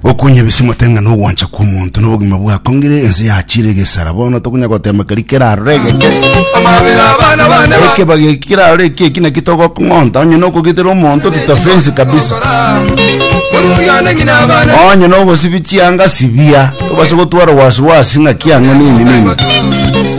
gokunya ebisimo tenga na ogwancha kw'omonto na obogima bwakongire ense yachire egesara bono tokunya gotema keri kerarore egeke amabere abana bane ba ekebage kirarore eki eki naki togokong'onta onye nokogitera omonto tutafensi kabisa oruyane ng'ina abana onye nogosibi chianga sibia tobase gotwara wasiwasi ng'aki ang'o nini nini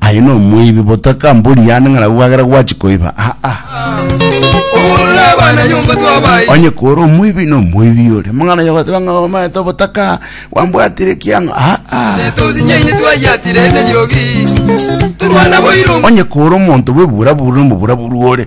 Aye nomoibi botaka mbori yane ng'a nabo bwagera gwachi koiba aa. Oborure abana nyomba twabaye. Onye kore omoibi nomoibi ore. Mang'ana yogoteba ng'a omaete obotaka bwambwatire kiang'a aa. Netozinyaine twayatire neriogi. Turwana boiro. Onye kore omonto bwebura bura nomobura buru ore.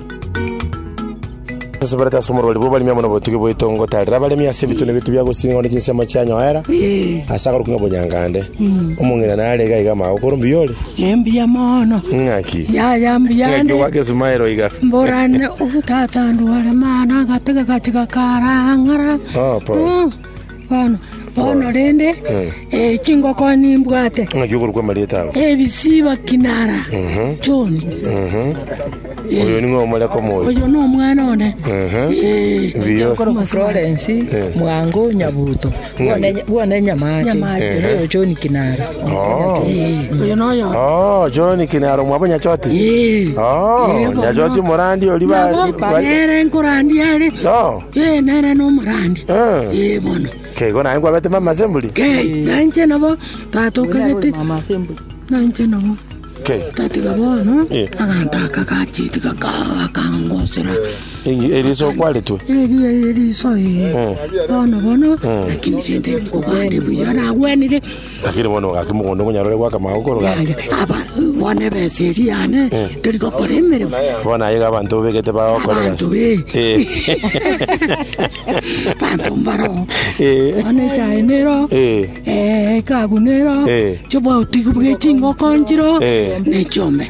Nseseberete ase omorwari bw'abaremi amo nobotugi bwaito ngotarera abaremi ase ebitune biaito bia gosinga onde chinsemo chianyoera ase agoruka ng'a obonyangande. Omong'ina nare iga iga amagoko ore mbuya ore. Embuya mono. Ng'aki? Yaya mbuya Ng'aki ande. ogwaka esumaero iga? Mborane obutata ndware mana gatege gatiga karang'ara. Oh, pole. Mm. Bono rende, chingoko nimbwate, ebisiba kinara John. Oyo nomwana one. Florence Mwango Nyabuto, bwone Nyamate, oyo John Kinara. Oyo noyo. Oh, John Kinaro mwabo Nyachoti. Oh, Nyachoti morandi ori ba. Nere nkorandi are. Oh. Ee, nere nomorandi. Ee, bono. Okay, igo naye nkwabete mama ase emburi? Kei, na inche nabo tata okagete. Na inche nabo. Okay. Tatiga bono, Eh. aganta aka gacheti gakangosera. Eri- Eriso kwaretwe. Eri eri riso ee. Eh. Bono bono, lakini rende nkobande buya nagwenire. Lakini bono bagaka mogondo ngonyare ore goaka amagogo korogaki. Yaya, aba bono ebesa eri yane tori gokora emeremo Bono aye iga abanto obegete bagokora abantu egasi. be Eh. banto mbaro Eh. bono echae nero Eh. eh, ekabu nero Eh. chobauti bwe chingoko nchiro Eh. nechombe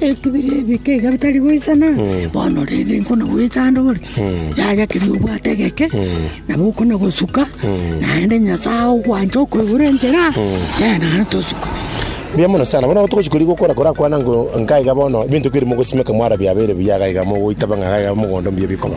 Ekebire ebike iga bitari goisana, bono rende nkona goeta ande ore, yaya keria obwate egeke, nabo okona gosuka, naende Nyasae agogwancha okoigure enchera, ee, naende tosuke. Mbuya mono sana. Bono togochi koria gokora korakwana ngo nka iga bono ebinto keria mogosimeka mwara biabeire buya iga iga mogoitaba ng'a iga iga mogondo mbuya bikoba.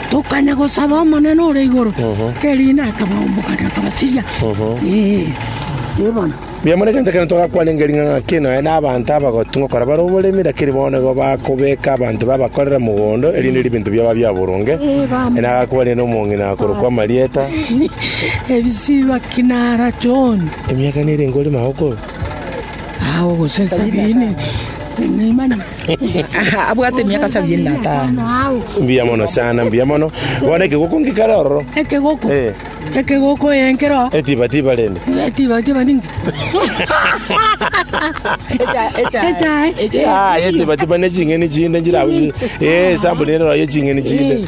tokanya gosaba Omonene ore igoro, erinde akabaombokania, akabasiria. Ee bono. Mbuya mono egento ekero togakwana enga ring'ana ng'aki nonya na abanto abagotu ngokora bare oboremi, lakini bono nigo bakobeka abanto babakorere mogondo, erinde ribinto biaba bia boronge. Ee bono. Ere nagakwanire nomong'ina akorokwa Marieta, Ebisiba Kinara John. emiaka nere enka ore magokoro. Mbuya mono sana, mbuya mono. Bono ekegoko ngekare ororo. Ekegoko. Eh. Ekegoko eh, nkero. Etiba tiba rende. Etiba tiba ninki? Echae. Ah, etiba tiba ne ching'eni chinde njira abu. Eh, sample rero ye ching'eni chinde.